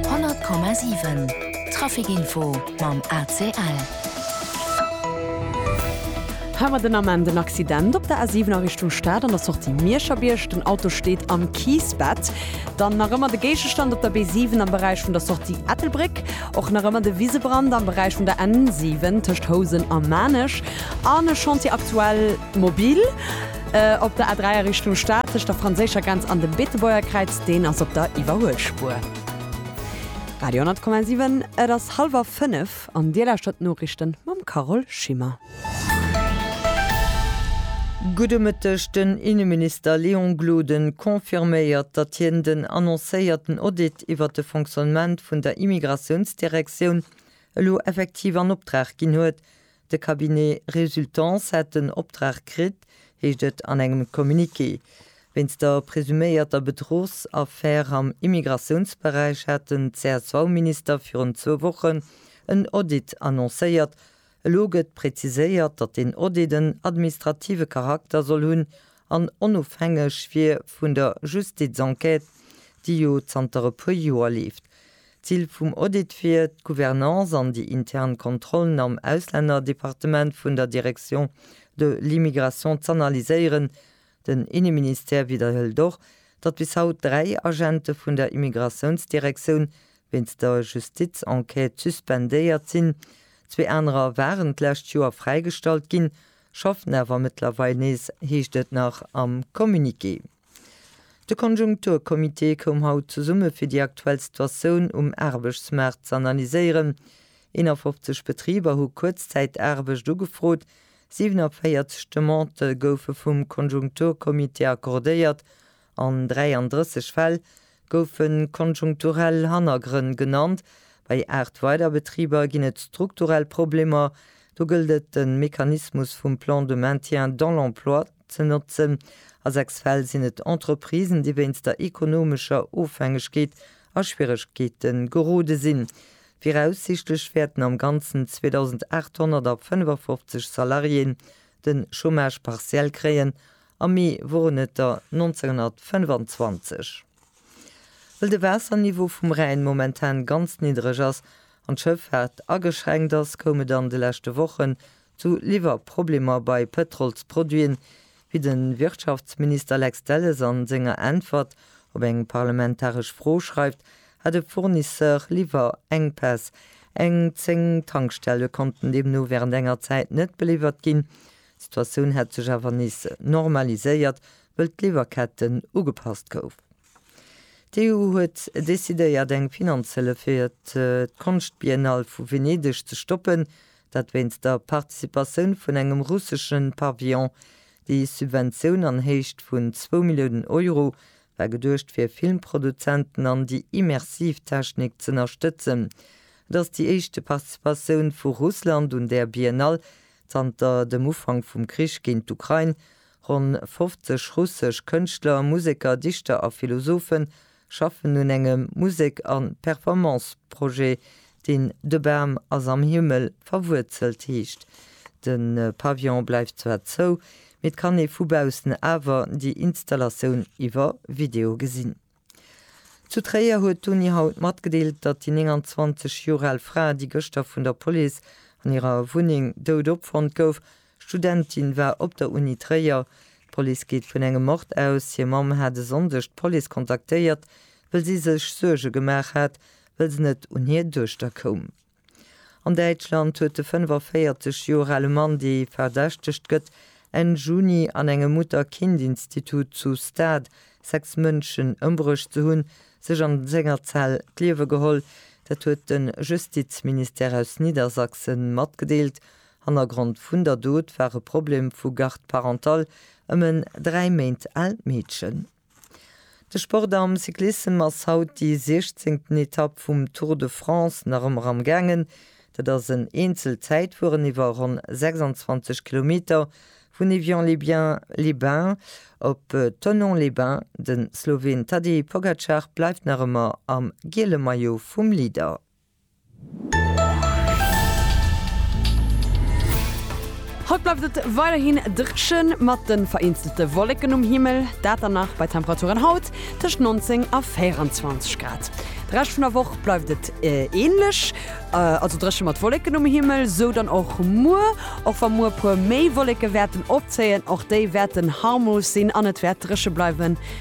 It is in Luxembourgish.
100,7 Trafic Info mam ACL. Hawer den Ament en Accident op der A7 a Richtung Stad an der Sortie Mierscherbierg. Den Auto steet am Kiissbett. Dann nach ëmmer de Géigestand op der B7 am Beräich vun der Sortie Ettelbréck. Och nach ëmmer de Wisebrand am Beräich vun der N7 tëscht Housen a Maarnech. An e Chantier aktuell mobil. Op der A3 a Richtung Stad tëscht der franséischer Grenz an dem Beetebuerger Kräiz, deen ass op der Iwwerhuelspuer. Radio 10,7, et ass hallwer 5 an Dir lauschtert d'Noriichten mam Carole Schimmer. Gudde Mëtteg, Den Inneminister Léon Gloden confirméiert, datt hien den annoncéierten Audit iwwert de Fonctionnement vun der Immigratiounsdirektioun elo effektiv an Optrag ginn huet. De Cabinet Résultance hätt den Optrag kritt, heescht et an engem Communiqué. Wéinst der presuméierter Bedruchsaffär am Immigratiounsberäich hat den CSV-Minister virun zwou Wochen en Audit annoncéiert. Elo gëtt preziséiert, datt deen Audit en administrative Charakter soll hunn an onofhängeg wier vun der Justizenquête, déi jo zanter e puer Joer leeft. D'Zil vum Audit wier, d'Gouvernance an déi intern Kontrollen am Auslännerdepartement vun der Direction de l'immigration z'analyséieren. Den Inneministère widderhëlt och, datt bis haut dräi Agente vun der Immigratiounsdirektioun wéinst der Justizenquête suspendéiert sinn. Zwee anerer waren d'lescht Joer fräigestallt ginn. Schaffen awer mëttlerweil nees, heescht et nach am Communiqué. De Konjunkturcomité koum haut zesumme fir déi aktuell Situatioun um Aarbechtsmaart z'analyséieren. 51 Betriber hu Kuerzzäitaarbecht ugefrot, 47 Demandë goufe vum Konjunkturcomité accordéiert An 33 Fäll goufe konjunkturell Hannergrënn genannt. Bei 8 weider Betriber ginn et strukturell Problemer. Do gëllt et, de Mechanismus vum Plan de maintien dans l'emploi ze notzen. A 6 Fäll sinn et Entreprisen, déi wéinst der ekonomescher Ofhängegkeet a Schwieregkeete gerode sinn. Viraussichtlech wäerten am Ganzen 2.855 Salariéen de Chômage partiel kréien Am Mee woren et der 1925. Wëll de Waasserniveau vum Rhäin momentan ganz niddreg ass an d'Schëffaart ageschränkt ass, koum et an de leschte Wochen zu Liwwerproblemer bei Pëtrolsproduiten, wéi de Wirtschaftsminister Lex Delles a senger Äntwert op eng parlamentaresch Fro schreift, hat e Fournisseur Liwwerenkpäss. Eng 10 Tankstelle konnten deemno wärend enger Zäit net beliwwert ginn, D'Situatioun hätt sech awer nees normaliséiert, wëll d'Liwwerkette ugepasst gouf. D'EU huet decidéiert eng Finanzhëllef fir d'Konschtbiennale vu Venedeg ze stoppen, dat wéinst der Participatioun vun engem russesche Pavillon. Déi Subventioun an Héicht vun zwou Milliounen Euro war geduecht fir Filmproduzenten an déi immersiv Technik z'ënnerstëtzen. Et ass déi éischte Participatioun vu Russland un där Biennale Zanter dem Ufank vum Krich géint d'Ukrain, ronn 50 russesch Kënschtler, Museker, Dichter a Philosophen schaffen un engem Musek a Performance-Projet, deen De Bam ass am Himmel verwuerzelt heescht. De Pavillon bleift zwar zou, mee et kann ee vu baussen awer déi Installatioun iwwer Video gesinn. Zu Tréier huet d'Uni haut matgedeelt, datt déi 29 Joer al Fra, déi gëschter vun der Police an hirer Wunneng dout opfonnt gouf, Studentin war op der Uni Tréier. D'Police geet vun engem Mord aus. Hir Mamm hat e Sonndeg d'Police kontaktéiert, wëll si sech Suerge gemaach hat, wëll se net un hir Duechter koum. An Däitschland huet de 45 Joer ale Mann, dee verdächtegt gëtt, Enn Juni an engem Mutter-Kind-Institut zu Stade sechs Mënschen ëmbruecht ze hunn, sech an senger Zell d'Liewe geholl. Dat huet de Justizministère aus Niddersachse matgedeelt. Hannergrond vun der Dot war e Problem vu Garde parentale ëm en dräi Méint aalt Meedchen. De Sport am Cyclissem ass haut déi siechzéngten Etapp vum Tour de France nach ëmmer am gaangen. Dat ass en Eenzelzäitfueren iwwer ronn 26 Kilometer vun Évian-les-Biens, Les Bains, op Thonon-les-Bains. De Sloween Tadej Pogacar bleift nach ëmmer am giele Maillot vum Leader. Haut bleift et weiderhin drëchen, mat den vereenzelte Wolleken um Himmel, dat dann nach bei Temperaturen haut tëscht 19 a 24 Grad. De Rescht vun der Woch bleift et ähnlech, also drëchen mat Wolleken um Himmel, esou dann och muer, och wa muer e puer méi Wolleke wäerten opzéien, och déi wäerten harmlos sinn an et wäert drëche bleiwen.